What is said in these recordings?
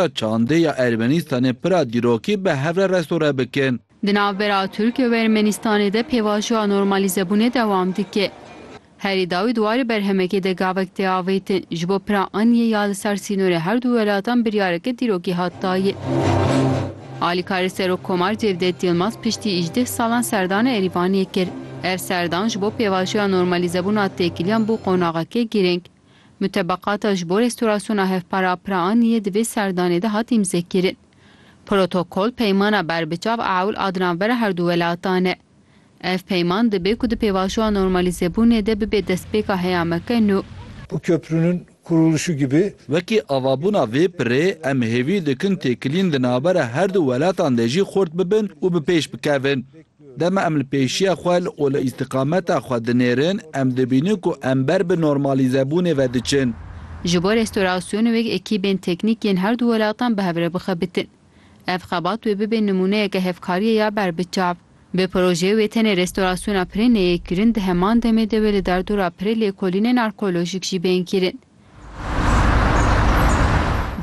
Çandê ya Ermenîstanê pira dîrokî bi hev re restore bikin. Di navbera Tirkiye û Ermenîstanê de pêvajoya normalîzebûnê dewam dike. Herî dawî di warê berhemekê de gavek tê avêtin. Ji bo pira aniyê ya li ser sînorê her du welatan biryareke dîrokî hat dayin. Alîkarê Serokkomar Cevdet Yilmaz piştî îjdeh salan serdana Erîvanê kir. Ev serdan ji bo pêvajoya normalîzebûna têkiliyan bû qonaxeke girîng. Mutebeqata ji bo rêstorasyona hevpara Piraaniyê di vê serdanê de hat îmzekirin. Protokol peymana berbiçav a ewl a dinavbera her du welatan e. Ev peyman dibe ku di pêvajoya normalîzebûnê de bibe destpêka heya me ke nû. Bu köprünün kuruluşu gibi. Wekî avabûna vê pirê, em hêvî dikin têkilîn di navbera her du welatan de jî xurt bibin û bi pêş bikevin. Dema em li pêşiya xwe û li îstiqameta xwe dinêrin, em dibînin ku em ber bi normalîzebûnê ve diçin. Ji bo restûrasyonê wek ekîbên teknîk yên herdu welatan bi hev re bixebitin. Ev xebat wê bibe nimûneyeke hevkariyê ya ber bi çav. Bi projeyê wê tenê restûrasyona pirê neyê kirin, di heman demê de wê li derdora pirê lêkolînên arkeolojîk jî bên kirin.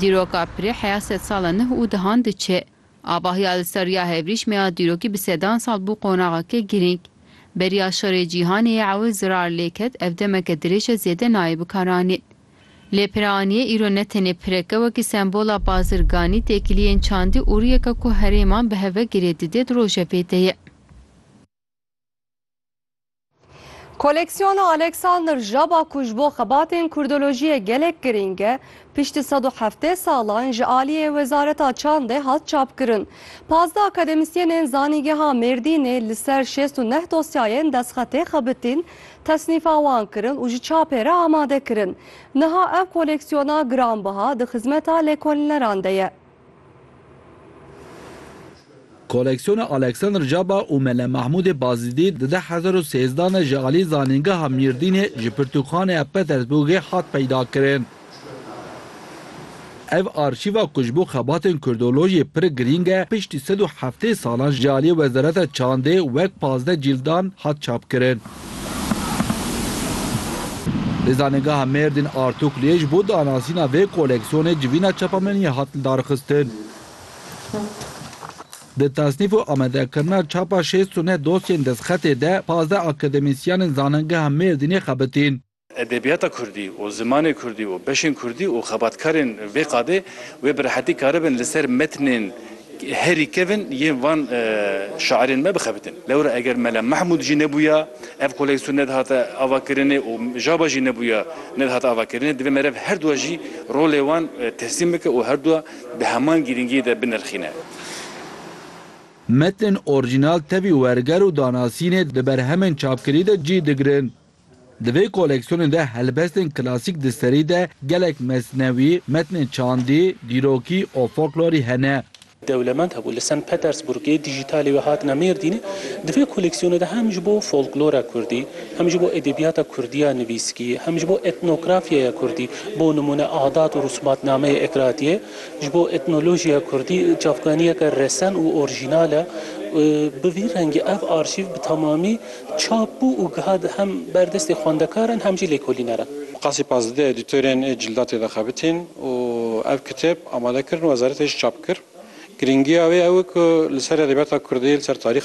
Dîroka pirê heya sedsala nuh û dehan diçe. Ava ya li ser ya hevrîşme ya dîrokî bi sedan sal bû qonaxeke girîng. Beriya şerê cîhanê yê ew zirar lê ket ev demeke dirêj e zêde nayê bikaranîn. Lê pireaniyê îro ne tenê pirek e wekî sembola bazirganî, têkiliyên çandî û riyeke ku herêman bi hev ve girê didê di rojevê de ye. Koleksiyona Alexander Jaba ku ji bo xebatên kurdolojiyê gelek girîng e, piştî sed û heftê salan ji aliyê Wezareta Çandê hat çapkirin. Pazdeh akademisyênên Zanîngeha Mêrdînê li ser şêst û neh dosyayên destxetê xebitîn, tesnîfa wan kirin û ji çapê re amade kirin. Niha ev koleksiyona giranbiha di xizmeta lêkolîneran de ye. Koleksiyona Alexander Caba û Mele Mahmûdê Bazidî di deh hezar û sêzdeh de ji alî Zanîngeha Mîrdînê ji Pirtûkxaneya Petersburgê hat peydakirin. Ev arşîva ku ji bo xebatên kurdolojiyê pir girîng e, piştî sed û heftê salan ji aliyê Wezareta Çandê wek pazdeh cîldan hat çapkirin. Li Zanîngeha Mêrdîn Artûkliyê ji bo danasîna vê koleksyonê civîna çapameniyê hat lidarxistin. Di tasnîf û amadekirina çapa şêst û neh dosyên destxetê de pazdeh akademîsyenên Zanîngeha Mêrdînê xebitîn. Edebiyata kurdî û zimanê kurdî û beşên kurdî û xebatkarên vê qadê wê bi rehetî karibin li ser metnên herî kevn yên van şairên me bixebitin. Lewra eger Mela Mehmûd jî nebûya, ev koleksyon nedihata avakirinê û Jaba jî nebûya nedihata avakirinê, divê meriv her dua jî rolê wan tehsîn bike û her dua di heman girîngiyê de binirxîne. Metnên orjînal tevî werger û danasînê di berhemên çapkirî de cî digirin. Di vê koleksiyonê de helbestên klasîk di serî de gelek mesnewî, metnên çandî, dîrokî û folklorî hene. Dewlemend hebû. Li Sen Petersburgê dijîtalê wê hatine Mêrdînê. Di vê koleksiyonê de hem ji bo folklora kurdî, hem ji bo edebiyata kurdî ya nivîskî, hem ji bo etnografyaya kurdî, bo nimûne adat û rûsmatnameyê Ekratiyê, ji bo etnolojiya kurdî çavkaniyeke resen û orjînal e. Bi vî rengî ev arşîv bi tamamî. Çap bû û giha hem ber destê xwendekaran hem jî lêkolîneran. Qasî Pazli di edîtorên cîldatê de xebitîn û ev kitêb amade kirin û wezaretê jî çap kir. Girîngiya wê ew e ku li ser edebiyata kurdî, li ser tarîxa.